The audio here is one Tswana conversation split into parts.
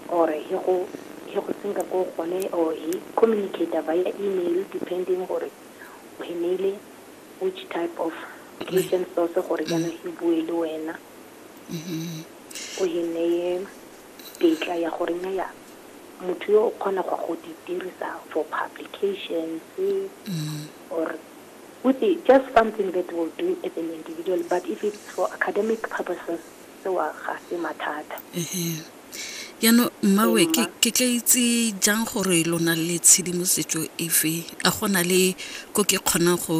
or he go he go senka ko gone or he communicator via email depending gore o he neile which type of written source gore kana he bue le wena o he neye tetla ya gore nya ya motho yo o kgona go go di dirisa for publications or with just something that will do as an individual but if it's for academic purposes Tseo ga se mathata. Ehe. Jaanong mmawe Ee, ke mma. ke tla itse jang gore lo na le tshedimosetso efe? A go na le ko ke kgonang go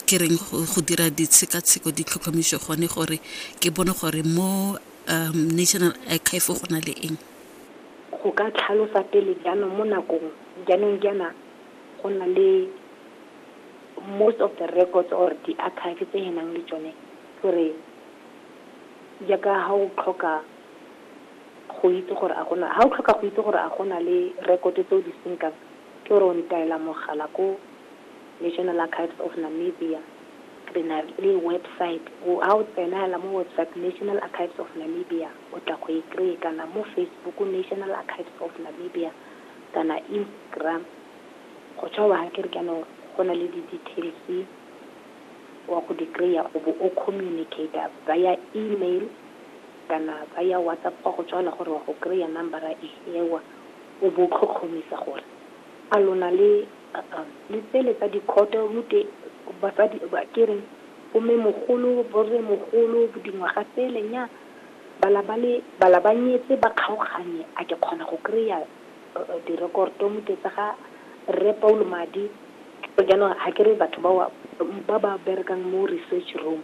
ke reng go go dira ditshekatsheko ditlhotlhomiso gone gore ke bone gore mo um National Archive go na le eng? Go ka tlhalosa pele jaanong mo nakong jaanong jaana go na le most of the records or di-archive tse re nang le tsone ke gore Jaaka ha o tlhoka go itse gore a gona, ha o tlhoka go itse gore a gona le rekoto tse o di senkang, ke gore o ntaela mogala ko National Archives of Namibia, re na le website, ha o tsena hela mo website National Archives of Namibia, o tla go e kry-e, kana mo Facebook National Archives of Namibia, kana Instagram, go tjho wa ha ke re jaanong go na le di-details-e. wa go di kry-a o bo o communicate-a via email kana via WhatsApp gwa go tswa fela gore wa go kry-a number-a e ewa, o bo o tlhotlhomisa gore a lona le le tsele tsa dikhoto gotwe basadi ke reng bommemogolo, borremogolo, dingwaga tsele nnyaa bala ba le bala ba nyetse ba kgaoganye a ke kgona go kry-a Direkoto mo ke tsa ga Rre Paulo Madi, so jaanong ga ke re batho bao ba ba berekang mo research room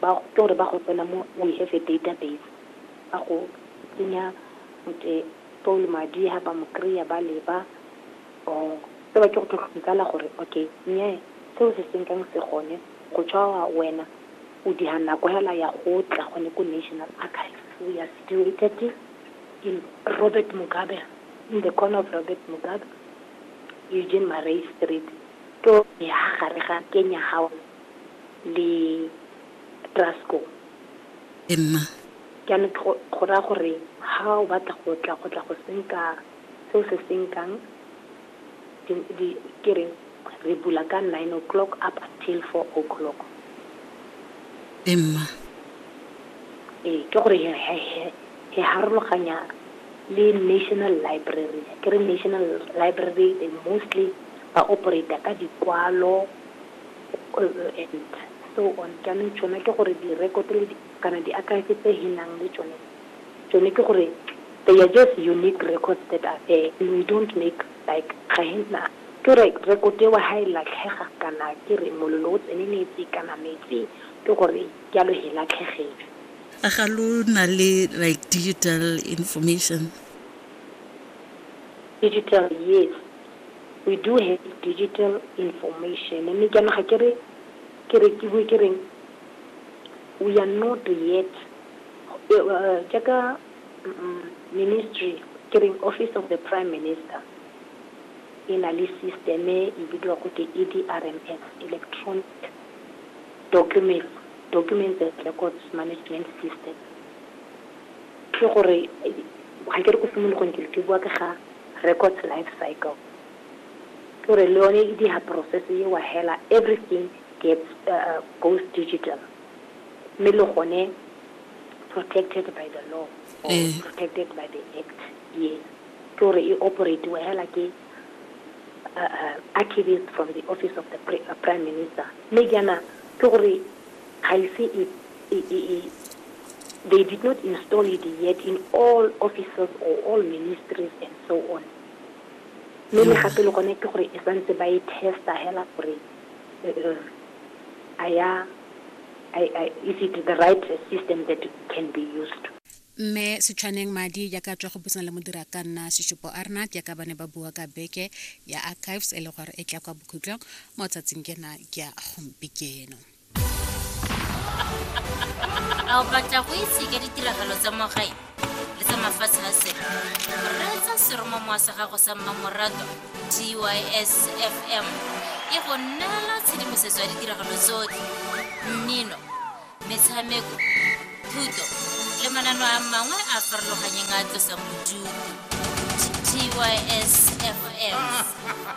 ba ke gore ba go tsena mo we have a database ba go tsenya motse Paulo Madi ha ba mo kry-a ba leba or se ba ke go tlhotlhomikala gore okay nnyaa seo se senkang se gone go tshwa wena o diha nako hela ya go tla gone ko National Archives we are situated in Robert Mugabe, in the corner of Robert Mugabe, Eugene Marais Street, ke o ne ha gare ga Kenya House le Trasco. Emma. Jaanong go go raya gore ha o batla go tla go tla go senka seo se senkang ke re re bula ka nine o'clock up until four o'clock. E mma. Ee, ke gore he harologanya le National Library. Ke re National Library they mostly ba operate-a ka dikwalo and so on. Jaanong tsone ke gore di-record kana di-archive tse he nang le tsone. Tsone ke gore they are just unique records that are there and we don't make like ga he na ke gore record eo ha e latlhega kana ke re molelo o tseneletse kana metsi ke gore jalo he latlhegele. A ga lo na le like digital information? Digital yes we do have digital information mme jaanong ga ke re ke re ke bue ke reng we are not yet Jaaka ministry, ke reng office of the prime minister, e na le system e e bidiwang go te EDRMS, Electronic Documents, Documents and Records Management System. Ke gore, ga ke re ko simologong ke ke bua ka ga records life cycle. Ke gore le yone e diga process eo hela, everything gets, goes digital. mme le gone protected by the law or eh. protected by the act yes ke gore e operatiwa hela ke uh, uh, archivist from the office of the uh, prime minister mme jaana ke gore ga ise e, e, e, they did not install it yet in all offices or all ministries and so on mme le gape le gone ke gore e santse ba e testa hela gore is it the right system that can be used. Mme Setshwaneng Madi jaaka a tswa go buisana le modira ka nna Seshupo Arnard jaaka ba ne ba bua ka beke ya Archives e le gore e tla kwa bokhutlong mo tsatsing kena ke ya gompikeno. A o batla go itse ka ditiragalo tsa mo gae? le tsa mafatshe a sele reetsa seromo moa sa gago sa mmamorato tys fm e go neela tshedimosetso ya ditiragalo tsotlhe mmino metshameko thuto le manano a mangwe a farologanyeng a tlosang bodutu tys fm